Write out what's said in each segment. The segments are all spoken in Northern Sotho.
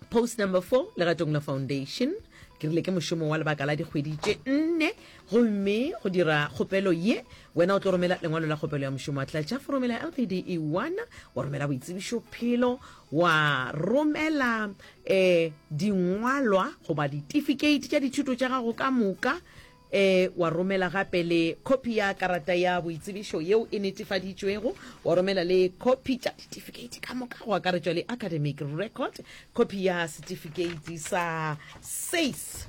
post number four legatong la foundation ke rile ke mošomo wa lebaka la dikgwedi tše nne gomme go dira kgopelo ye wena o tlo romela lengwalo la kgopelo ya mošomo wa tlatša foromo la lpd e one wa romela boitsebišo phelo wa romela um dingwalwa goba ditifikate tša dithuto tša gago ka moka Ee, wa romela gape le khopi ya karata ya boitsebišo yeo e netefaditšwego, wa romela le khopi tša ditifikeiti ka moka, go akaretšwa le academic record, khopi ya setifikeiti sa SACE,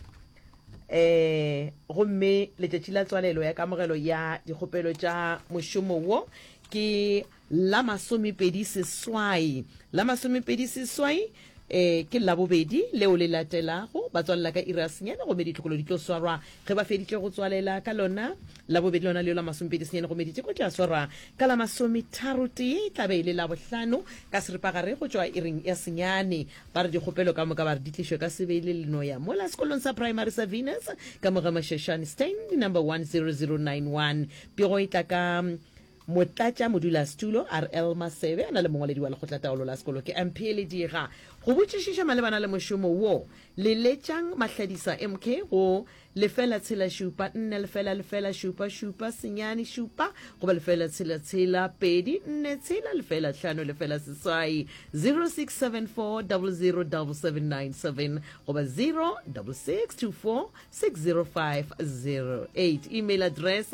ee, gomme letšatši la tswalelo ya kamogelo ya dikgopelo tša mošomo wo ke. La masomepedi seswai. La masomepedi seswai e ke Labobedi leo le latelago. Ba tswalela ka iri ya senyane gomme ditlokolo di tlo swarwa ge ba feditše go tswalela ka lona Labobedi lona leo la masomepedi senyane gomme diteko di a swarwa ka la masometharotee. E tla be e le Labohlano ka seripagare go tšwa iring ya senyane. Ba re dikgopelo ka moka ba re di tlišwe ka Sebele le Noya mola sekolong sa praemari sa Venus ka mo Gemashashane, Stand number 10091. Pego e tla ka. Motlatša modulasetulo RL Masebe a na le mongwaledi wa lekgotlataolo la sekolo ke Mphe Lediga. Go botšišiša malebana le mošomo wo, le letšang Mahladisa MK go lefela tshela šupa nne lefela lefela šupa šupa senyane šupa goba lefela tshela tshela pedi nne tshela lefela hlano lefela seswai 0674007797 goba 0662460508. Email address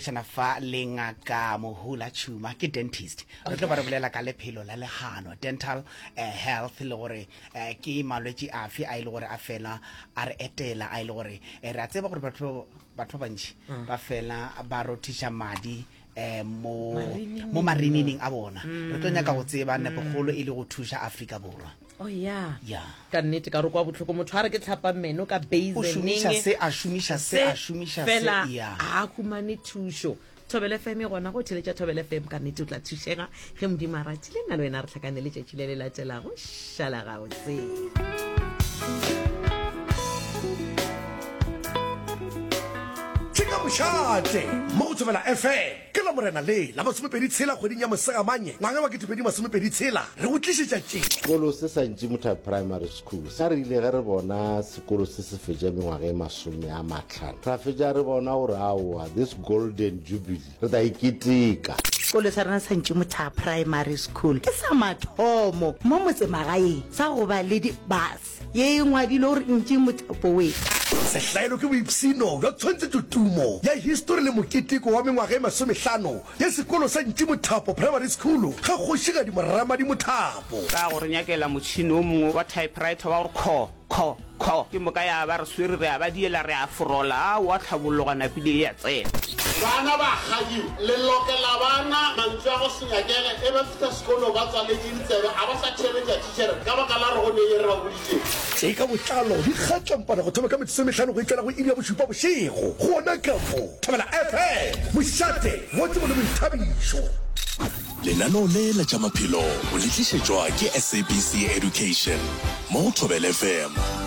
Tshwana fa le ngaka Mohula Tšhuma ke dentist. Re tlo ba re bolela ka lephelo la legano, dental eh, health le gore eh, ke malwetši afe a e le gore a fela a re etela a e le gore eh, re a tseba gore batho batho ba bantši mm. ba fela ba rothiša madi eh, mo mo marinineng a bona. Re tlo nyaka go tseba mm. nepogolo e le go thuša Afrika Borwa. o oh, ya ya ka nnete ka re kwa botlhoko motho a re ke tlhapa meno ka baseneng se a šomiša se a šomiša fela a humane thušo thobele fm e gona go theletša thobele fm ka nnete o tla thušega ge modimo a ratile nna le wena re tlhakane le tšatši le le latelago šala gabotse Shot, Motivela FM. Ke Lamorena le la masomepedi tshela kgweding ya Mosegamanye ngwaga wa ketepedi masomepedi tshela re go tlišetša tše. Sekolo se sa Ntšimutha Primary School sa rile ge re bona sekolo se se fetša mengwaga e masome a mahlano ra fetša re bona gore aowa this golden jubilee re tla e keteka. Sekolo sa rena sa Ntšimutha Primary School ke sa mathomo mo motsemagaeng sa go ba le di bus. Ye e ngwadilwe gore ntši mothapo we. Sehlaelo ke boipshino bja tshwantshetšotumo ya histori le moketeko wa mengwaga e masomehlano ya sekolo sa Ntši Mothapo Primary School ga Kgošigadi Moramadi Mothapo. Ra go re nyakela motšhini o mongwe wa typewriter wa go kho, kho, kho. Ke moka ya ba re swere, re a ba diela, re a forola, a wa tlhabologa napile e a tsena. Bana ba kgadiwa, le lokela bana mantswe a go se nyakele, e ba fihla sekolong ba tswaletše ditsebe, a ba sa theeletša Ker, Ka baka la rogo ne ye ra boditše. Tše ka botlalo di gatšwampana go thoma ka metsotso e mehlano go ikela go iri ya bošupa bošego gona ka mo Thobela FM, mošate, Godimo le boithabišo. Lenaneo le la tša maphelo o le tlišetšwa ke SABC Education mo Thobela FM.